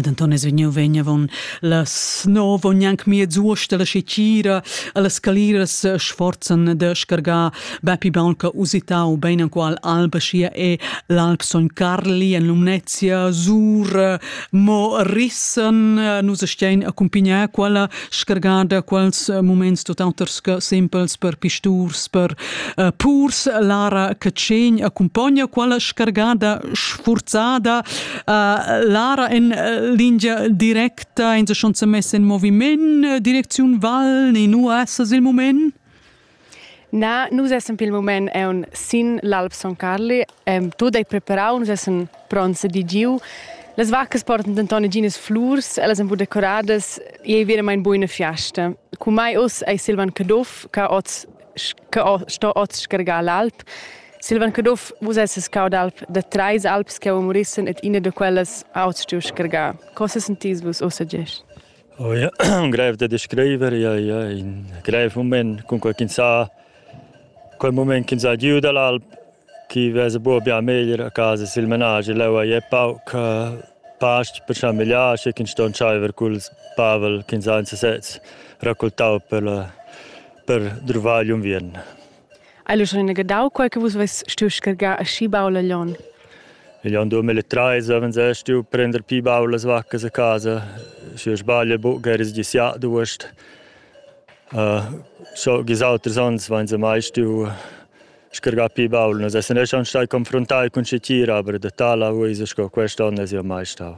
Ed Anton es vegniu vegn avon las nov ogni anc miez uost alla Scicira, alla scalira sforzan da scargar bepi baun che usitau bein anqual Albacia e l'Alp Son Carli en Lumnezia, Sur, mo rissen nus stein accumpignar quella scargar da quels eh, moments tutt'auters che simpels per pisturs, per uh, purs. Lara Cacegn accompagna quella scargada sforzada. Uh, Lara in uh, linea directa, in se schon messa in movimento, direkziun Val, in US il moment? Na, nus essan pil mument aunc sin l'Alp Son Carli, ehm, tut ei preparau, nus essan pronts ed i giu. Las vaccas portan denton neginas flurs, ellas ein buca decoradas, ei ei veramein buca ina fiasta. Cu mai uss ei Silvan Caduff, che oz che sto oz scargar l'alp. Silvan Caduff, vus esses cau d'alp da treis alps che murissen et ina da quellas ha oz stiu scargar. Cosa sentis vus ussa gest? Oh ja, grev da descriver, ja, ja, in grev mument, cunquai ch'ins ha quel mument ch'ins ha giu dall'alp, chi vesa buca bia meglier a casa sil menaschi. Leu ei è pauc uh, past per chamegliar, sche ch'ins sto entscheiver culs pavel ch'ins ha en sesez raccoltau per, la, per druvar gl'unviern. Hai lu schon ina gedau quei che vus veis stuiu scargar aschi baul a Glion? Io ando mit le treise, wenn se stu prender pi bau las vaccas a casa. Schi sbaglia buc eris gisià duost. Uh, schon gis auters ans vain se mai stu scargà pi baul. Nus essen schon stai confrontati cun si tira, aber da tala uisa sco quest'on es io mai stau.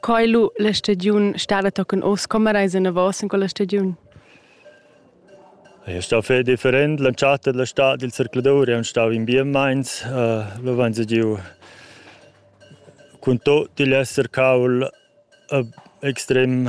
Coi lu la stagiun stada tochen oz, com eis enavos in quella stagiun? È stau fei different, l'entschatta della stad dil zercladur è stau in bien meins, uh, lo van se giu cun tot igl esser caul uh, extrem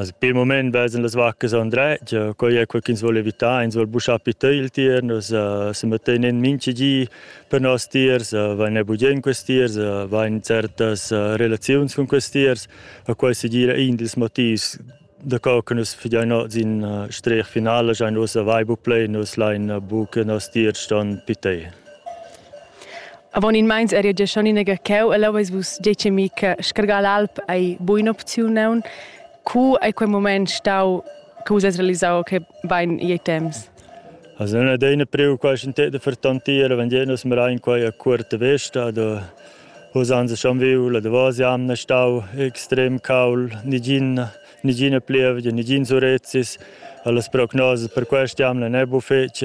Also per il moment vesen las vaccas han dretg, quai è quel ch'ins vuol evitar, ins vuol buschar pi tö il tier, nus uh, se mettein in minchi gi per nos tiers, uh, vain ne bugen quest tiers, uh, vain certas uh, relaziuns con quest tiers, a quai si gira in dils motivs da co che nus figiain oz in uh, strech finale, schein nus vai bu play, nus lain uh, buc nos tiers ston pitei. Avon in meins eri gia schon in cheu e leu eis vus detg e mi che scargar l'alp ei buina opziun aun. Cu ei quei mument stau che vus eis realisau che bein ei temps? Also non è una preoccupazione per tantiere, wenn jenos mir ein quai a curta vesta, da usanza schon viu, da was jamna stau extrem caul, nigin nigin plievgia, nigin surrezzis, alles prognosi per questa jamna ne bu fetg.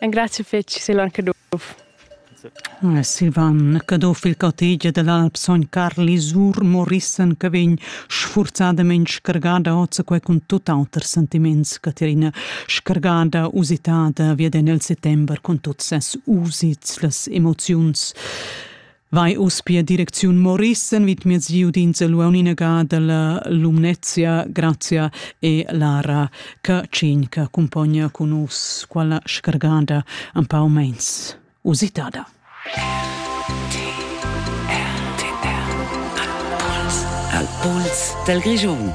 Engraziu fetg, Silvan Caduff. Silvan Caduff, il cottage dell'Alp Sogn Carli sur Morissen che vegn sfurzadament scargada oz quei cun tut auters sentiments, Caterina, scargada, usitada, via nel settember con tuts ses usits, las emoziuns. Vai uspia direcziun Morissen vid miez giu d'inseluon inaga dalla Lumnezia, Grazia e Lara, ca cin ca cumpogna cun us quella scargada un pau meins usitada. Al pols del Grigion.